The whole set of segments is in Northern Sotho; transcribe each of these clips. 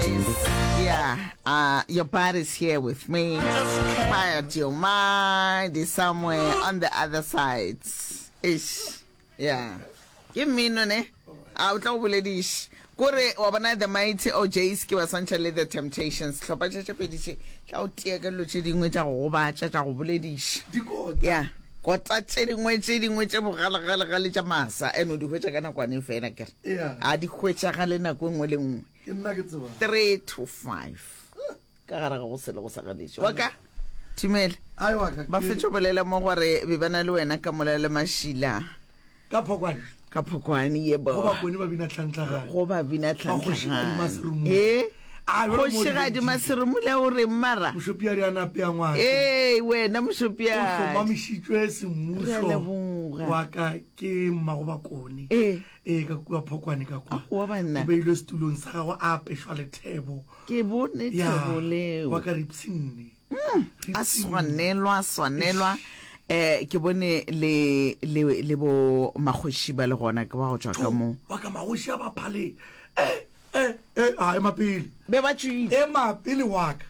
is yeah, uh, your body's here with me, but your mind is somewhere on the other side. Ish, yeah. Ke mmino ne? A o tla go bolediše. Kore wa bona the mighty OJs ke ba swantšha le the temptations. Tlhopha tše tše pedi tše. Tla o tia ka dilo tše dingwe tša go gobatša, tša go bolediša. Yeah. kota tše dingwe tše dingwe tše bogalegalegale tša masa and o di hwetša ka nakwane fela kere Yeah. a di hwetšagale nako e nngwe le nngwe Ke nna ke tseba. 3 to 5 ka gare ga go sele go sa ganetše wa ka tumele ba fetše bolela mo gore be ba na le wena ka mola le mašila ka phokwane ka phokwane ye bo ba kone ba bina tlhantlagane go ba bina tlhantlagane eh kgošigadi maseromule o reng mara mošopia re anape ya ngwana ee wena mošopia o hlomamišitšwe semmuso wa ka ke mmago ba kone ee ee ka kua phokwane ka kwa Aowa banna. o beilwe setulong sa gagwe a apešwa lethebo Ke bone ya thebo leo. wa ka ripshinne A swanelwa, a swanelwa. Eh, ke bone le, le, le bo makgoši ba le gona, ke wa go tšwa ka mo. wa ka magoši a baphaleng eh e e a ema pele be ba tšwile ema pele wa ka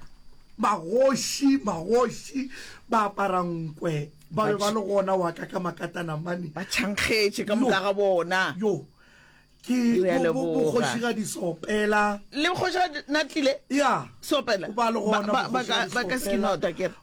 magoši magoši ba apara nkwe ba be ba le gona wa ka ka makatana mane ba tšhankgetše ka moka ga bona yo ke bogošigadi sopela le bogošigadi na tlile ya sopela ba ka se ke nota kere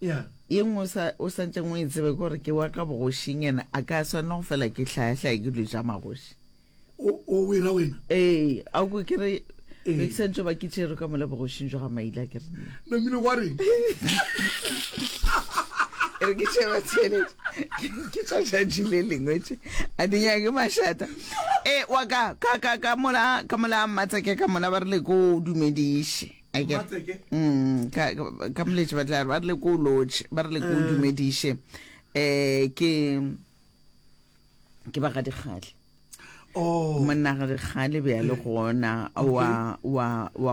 Ye nngwe o sa ntšeng o e tsebe ke gore ke wa ka bogošing ene a ka swanela go fela ke hlayahlaya ke dilo tša magoši o wera wena ee a ko ke re bekisantšo ba ke tšero ka mola bogošing jo ga maile a ke re namile gwa reng re ke sheba tšhelete ke tsa tšatši le lengwe tše a di nyake mašata e wa ka ka ka ka mola ka mola mmatsa ke ka mola ba rile ko o dumediše mm, ka moletše ba tla ba re le ko lotšhe ba re le ko eh. dumediše um ke ke ba ga dikgale oh. monna ga dikgale be ya le eh. gona wa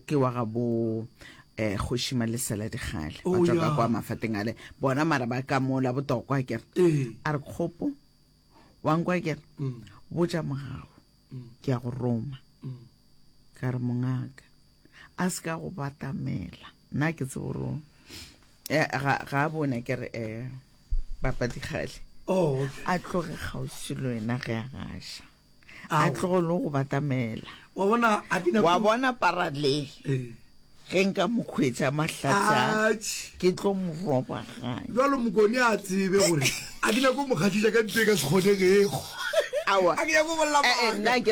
ke wa ga bo eh kgoši malesela digale oh, ba tswa kwa mafateng ale bona mara ba ka mola botokwa kere eh. a re kgopo wa nkwa kere mm. botša mogao ke a go roma ka re mongaka a se ka go batamela nna ke tse gore eh, ga a bone ke re um eh, bapadikgale oh, a tloge kgauswi le wena ge a gaša a tlogo le go batamela wa bona parale eh. ge nka mo kgwetsa mahlatsa ke tlo mo robaganya jalo mokone a tsebe gore a ke nyako mo kgatlhisa ka nto e ka se kgonegego a ke nyako bolela maaka